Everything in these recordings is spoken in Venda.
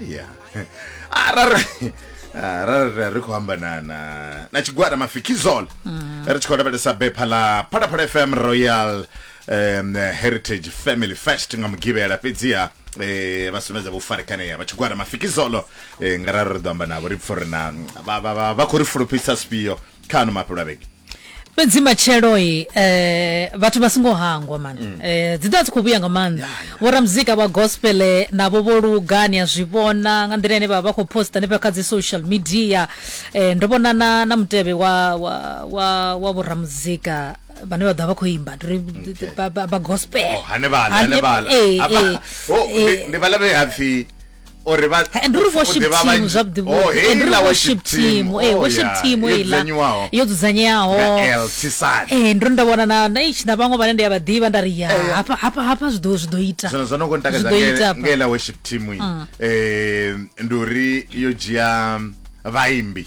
ya arali arali ri- ri khou amba na na na tshigwada mafikizol ri tshi khou lavhelesa bepha ḽa phalaphala fm royal um, heritage family fest nga mugivhela fhedziha eh, vha sumbedza vho farekanea vha tshigwada mafikizolo eh, nga rali ri ḓo amba navho ri pfha uri na vha- vha vha- vha khou ri fulufhisa zwifhio kha ano mafhelo a vhege fhedzi matshelo-i eh, vhathu vha songo hangwa mana mm. eh, dzi ḓa dzi khou vhuya nga maanḓa yeah, yeah. vhoramuzika vha gospel eh, navho vho luga ni a zwi vhona nga nḓila ine vha vha khou posta hanefha kha dzi social media eh, ndo vhona na, na mutevhe wa, wa, wa, wa vhoramuzika vhane vha ḓa vha khou imba ndi ba gospel oh, hanevhala hanevhala eh, eh, oh, ndi vhala vhe hapfi uri vha eh, ndi uri worship team zwavhuḓi vhuḓi eh, ndi uri worship team eh oh, worship team ila yo dzudzanyeaho eh ndo nda vhona na na ichi na vhaṅwe vhane ndi ya vha ḓivha nda ri ya eh, hapa hapa hapa zwi ḓo zwi ḓo ita zwo zwo no ngo ntakadza nge la worship team mm. eh ndi uri yo dzhia vhaimbi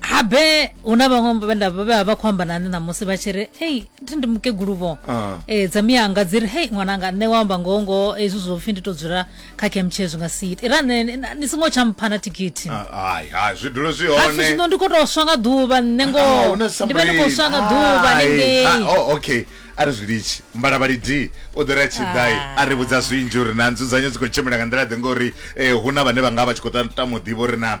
habe hu na vhaṅwe vhenda vhe vha vha khou amba nani ṋamusi vha tshi ri hei thi ndi mukeguluvho Ah. e dza miyanga dzi ri hei ṅwananga nṋe wa amba ngoho ngoho hezwi zwo pfhi ndi to dzula kha kemtshee zwi nga si ite ira nṋe ni- ni songo tsha mpha na thikithi Ah, hai hai zwi dule zwi hapfi hone zwino ndi khou tou swa nga ḓuvha nṋe Ah, ngoho huna ndi vha ndi khou swa nga somebody. ḓuvha Hai. ningei Ah, oh, okay a ri zwi litshi mbalavhali d u ḓo ri a tshiḓai Ah. a ri vhudza zwinzhi uri na nzudzanyo dzi khou tshimbila nga nḓila ḓe ngori um hu na vhane vha nga vha tshi khou ta- tama u ḓivha uri na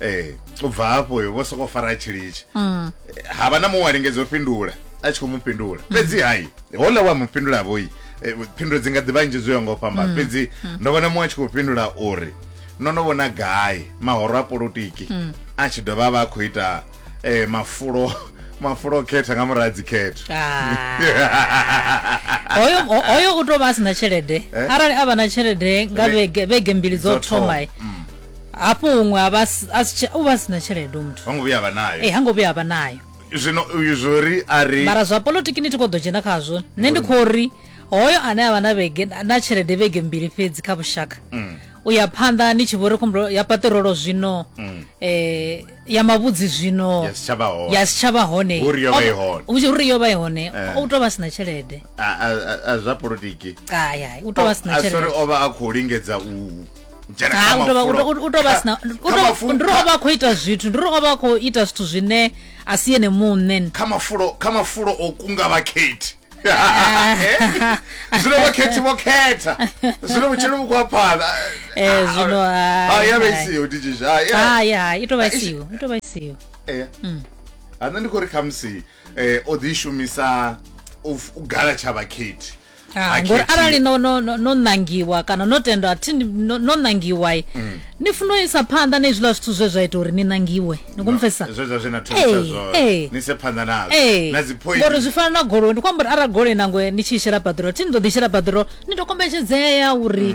ee u bva hafho vho sokou fara tshilitshi mm. ha vha na muṅwe wa lingedza u fhindula a tshi khou mu fhindula mm. fhedzi hai hola wa mu fhindula vhoi eh, phindulo dzi nga ḓivha nnzhi dzo ya ngo fhamba mm. fhedzi ndo vhona muṅwe a tshi khou fhindula uri no no vhona gai mahoro a polotiki a tshi dovha a vha a khou ita eh, mafulo mafulo o khetha nga muraha dzikhetho ah. hoyo u tou vha a si na tshelede eh? arali a vha na tshelede nga vhege mbili dzo thomai hafho huṅwe a vha si- a si tshe- u vha a si na tshelede u muthu ho ngo vhuya vha nayo ee ha ngo vhuya a vha nayo zwino uyu zwori a ri mara zwa polotiki ni ti khou ḓo dzhena khazwo nṋe ndi khou ri hoyo ane a vha na vhege na tshelede vhege mbili fhedzi kha vhushaka u ya phanḓa ni tshi vho ri khombo ya paṱirolo zwino um ya mavhudzi zwino ya si tsha vha hone ya si tsha vha hone Uri yo vha i hone. Hu tshi- uri yo vha i hone Eh. u tou vha si na tshelede A- a- a- a zwa politiki kaya u tou vha si na a sori tshelede o vha a khou lingedza u ndirova akho ita zwithu ndirova ova akho ita zwithu zwine a si yene muṋe kha mafulo kha mafulo o kunga vhakhethi zwino vhakhethi vho khetha zwino vhutshilo vhu khwa phanḓa eh, zwino ya vha isiho nditshizhaya i tovha isiho i tovha isiho eh. mm. ha nṋe ndi khou ri khamusi um eh, o ḓi shumisa u gala tsha vhakhethi Ah, Ha ngori khethi. arali no no no no nangiwa kana no tendwa thi ni- no no nangiwa i, Mm. ni funa u isa phanḓa na izwiḽa zwithu zwe zwa ita uri ni nangiwe ni kumfesa zwe zwa zwe na thusa Ee, zwo ee. ni se phanḓa nazwo ee na dzi point ngori zwi fana na goloi ndi khou amba uri arali goloi nango ni tshi i shela paṱirolo thi ni ḓo ḓi shela paṱirolo ni ḓo kombetshedzea uri